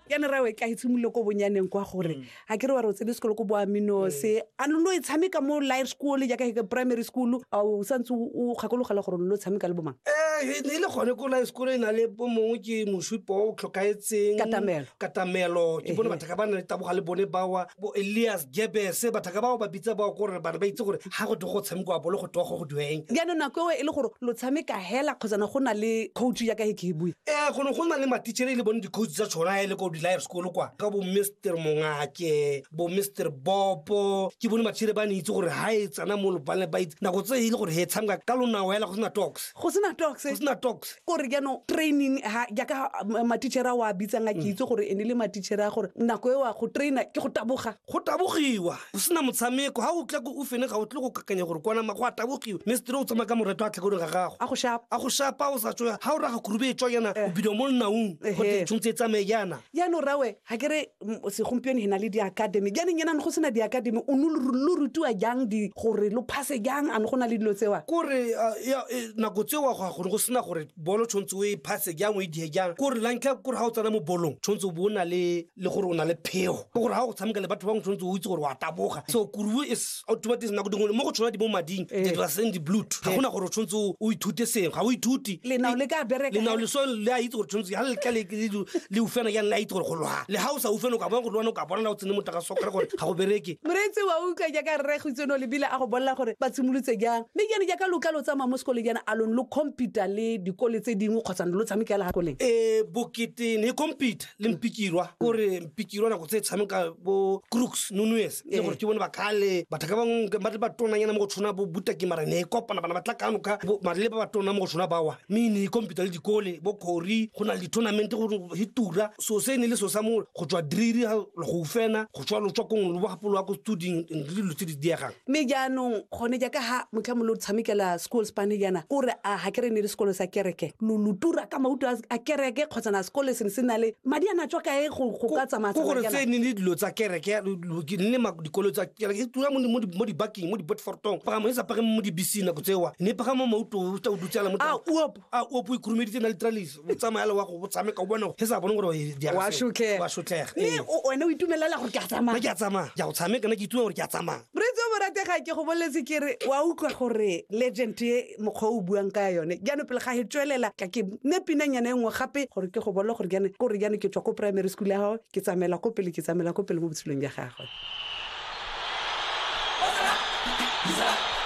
ya ne rawe ka itshimolole ko bonyaneng kwa gore mm. ga ke re wa re o tsene sekolo ko boaminose a lo lo e tshameka mo life school jaaka ke primary school a o santse o kgakologela gore lo tshameka le bomang ee ne e le gone ko life school e na le bo mongwe ke mosupo o tlhokaetseng katamelo katamelo ke bone batho ka ba na le taboga le bone bawa bo elias jebese bathaka bao ba bitsa bao kore bane ba itse gore ga go go tshameko wa bolo go togo go dueng jaanong nako eo e le gore lo tshameka hela kgotsana go na le coach ya ka e ke e bue ee go ne go na le matichere e le bone di-coach tsa tshona e le ko di-life school kwa ka bo mr mongake bo mr bopo ke bone matichere ba ne itse gore ga e tsana mo lobane ba itse nako tse e le gore he tshameka ka lonao hela go sena tox go sena tox go sena tox kore jaanong training ha jaaka matitšhere a o a bitsang a ke mm. itse gore e ne le matitšhere a gore nako e wa go traina ke go taboga go tabogiwa go sena motshameko ga o tla ko ufene ga o tle go kakanya gore kwanama go a tabogiwa mme setere o tsamaya ka moreto a tlhakoding ga gago a go shapa a go shapa o sa tsoya ga o raga kurube e tswa yana eh. o bidio mo nnaung gote tshwanetse e tsamaye yana jaanong rawe ga kere segompieno e na le di-academy jaanong enane go sena di-academy o ne lo rutiwa jang di gore lo phase jang a ne go na le dilo tsewa kore e, nako tsewa go gone go sena gore bolo tshwanetse o e phase jang o e die jang kore la ntlha kore ga o tsena mo bolong tshwanetse o bo o na le le gore o na le phego ke gore ga go tshameka le batho bangwe tshwanetse o itse gore wa taboga so kuruo is o tuba teng nako dingwe mo go tshwana di mo mading Eh. that was in the blood ga gona gore o tshwanetse o- o ithute sengwe ga o ithute Lenao le ka bereka. lenao le so le a itse gore tshwanetse ga le tla le- le- le- le ufena jang le a itse gore go lwa le ga o sa ufena o ka bona go lwana o ka bona na o tsene motaka so kry gore ga go bereke moreetsi wa utlwa jaaka rre gitseno lebile a go bolela gore ba tshimolotse jang mme jane jaaka loka lo tsamaya mo sekole jana a lone lo computa le dikole tse dingwe kgotsa ne lo tshamekela ga koleng e bokete ne computer le mpikirwa kore mpikirwa nako tse tshameka bo crooks nonues le gore ke bone ba kale batho ka bangwe ba le batonanyana mo go tshwana bo butaki mara ne e kopana bana ba tla kano ka mare le ba batona mo go tshwana bawa mme ne e kompita le dikole bo kori go na le di-tournamente go e tura so se ne le so sa mo go tswa driri go ufena go tswa lotswa kong lo bogapolo wa ko studing le dilo tse di diegang mme jaanong gone jaaka ha motlhamo lo tshamekela sekolo spane jaana o re a ga kere ne le sekolo sa kereke lo lo tura ka mauto a kereke kgotsa na sekole se ne se na le madi a na tswa kae go ka tsamaya ko gore tse ne le dilo tsa kereke ne ma dikolo tsa kereke e tura mo mo dibakeng mo dibotfortong pagamo e sa pagame mo dibiseng nako tsewa ne pagamo mauto o tsa o dutsela mo a uop a o po ikhurumeditse na litralis o tsamaya le wa go tshameka o bone he sa bone gore eh, di a Wa se- shotlhega. wa shotlhega mme o- wena o itumelela gore ke a tsamaya ke a tsamaya ke a go tshameka na ke ituma gore ke a tsamaya moreetsi o moratega ke go boletse ke re wa utlwa gore legend e mokgwa o o buang ka yone jaanong pele ga e tswelela ka ke ne pinanyana e nngwe gape gore ke go bole gore jaanong kore jaanong ke tswa ko primary school ya gago ke tsamaela ko pele ke tsamaela ko pele mo botshelong jwa gagwe